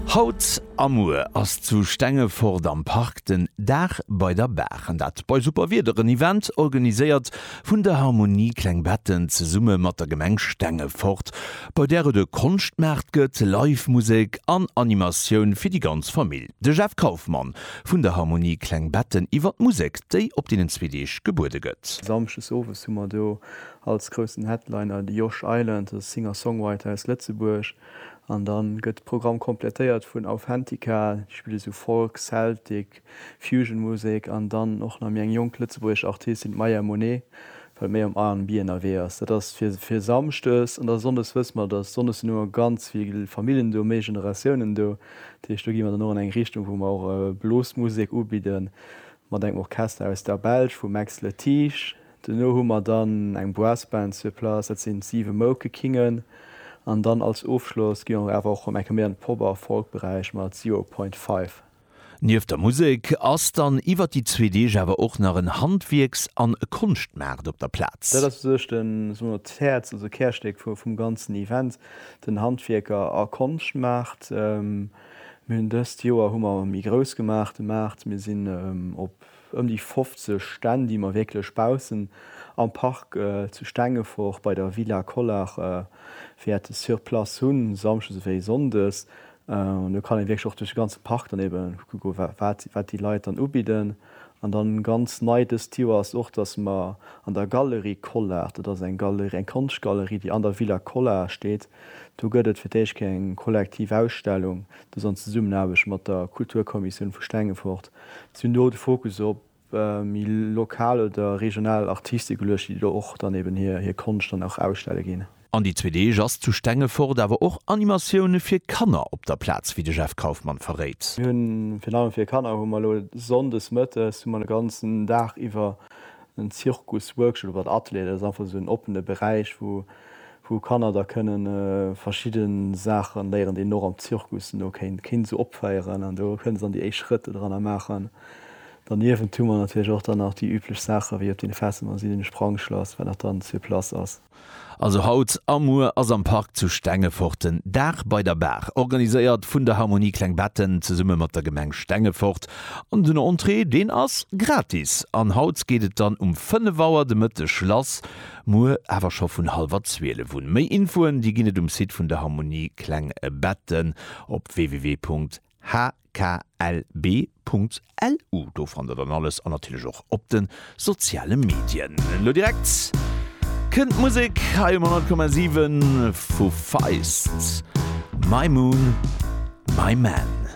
Haut a muer ass zu Stengefort am Park den Dag bei der Baach, an dat bei super Wieder, en Event organiséiert vun der Harmonie Klengbetten zesumme mat der Gemeng Stengefort, bei där et e Konschtmaart gëtt, Live Musek an Animatioun fir déi ganz Famill. De Jeff Kaufmann vun der Harmonie Klengbetten iwwer d'Musek, déi op deenen zwee Deeg gebuede gëtt. Samschdes owes hu mer do Als groussen Headliner de Josh Island, e Singer-Songwriter aus Lëtzebuerg. An da gëtt de Programm komplettéiert vun Authentica, déi spille sou Folk, Celtic, Fusion-Musek. An dann och nach méi eng jonk lëtzebuergesch Artistin, d'Maya Monet, wat méi am RnB ënnerwee ass. Dat ass fir fir samschdes. An da sonndes wësse mer, datt sonndes sinn ëmmer ganz vill Famillen do, méi Generatiounen do. Dat heescht, do gi mer dann och an eng Richtung, wou mer och Blosmusek ubidden, mat engem Orchester aus der Belsch, vum Max Letiges. Duerno hu mer dann eng Brassband sur place, dat sinn d'Siwe Moukekingen. An dann als Ofschloss gi mer awer och ëm enke méi an de Pop a Folkberäich mat Zero Point Five. Nieft der Musek ass dann iwwert déi zwee Deeg awer och nach en Handwierks an Konschtmaart op der Plaz. Dat ass u sech de, soe mer, d'Häerz, also d'Kärstéck vum ganzen Event, den Handwierker a Konschtmaart. Mir hunn dëst Joer hu mer méi grouss gemaach de Maart, mir sinn op ëm déi 50 Stänn, déi mer wierklech baussen am Park zu Stengefort bei der Villa Collart wäerte sur place hunn, samschdes ewéi sonndes. An do kann ee wierklech och duerch de ganze Park dann ebe kucke wat déi Leit dann ubidden. An dann ganz nei dëst Joer ass och, dass mer an der Galerie Collart, dat ass eng Galerie, eng Konschtgalerie, déi an der Villa Collart steet, do gëtt et fir d'éischt keng kollektiv Ausstellung, dass an Zesummenaarbecht mat der Kulturkommissioun vu Stengefort Si hunn do de Fokus op méi lokal oder regional Artiste geluecht, déi do och dann eben hir Konscht dann och ausstelle ginn. An déi zwee Deeg ass zu Stengefort awer och Animatioune fir Kanner op der Plaz, wéi de Jeff Kauffmann verréit. Mir hunn virun allem fir Kanner hu mer elo Sonndes mëttes hu mer de ganzen Dag iwwer en Zirkus-Workshop oder Atelier. Dat ass einfach esou en oppene Beräich, wou wou Kanner da kënne verschidde Saache léieren, déi een och am Zirkus no kéint kéint esou opféieren an do kënne se dann déi éischt Schrëtt do dranner maachen. Derniewent hu mer natierlech och dann nach déi üblech Saache wéi op deene Festen dann sinn, den Sprangschlass, wat nach dann sur place ass. Also haut a muer ass am Park zu Stengefort den Dag bei der Baach, organiséiert vun der Harmonie Kleng Betten zesumme mat der Gemeng Stengefort an den Entrée deen ass gratis an haut geet et dann um 5 Auer de Mëtteg lass. Muer awer scho vun hallwer 12 un. Méi Infoen déi ginn et um Site vun der Harmonie Klengbetten op www.hklb.lu. Do fannt der dann alles an natierlech och op de soziale Medien. Lo direkt kënnt d'Musek hei um 100,7 vu Feist, My Moon, My Man.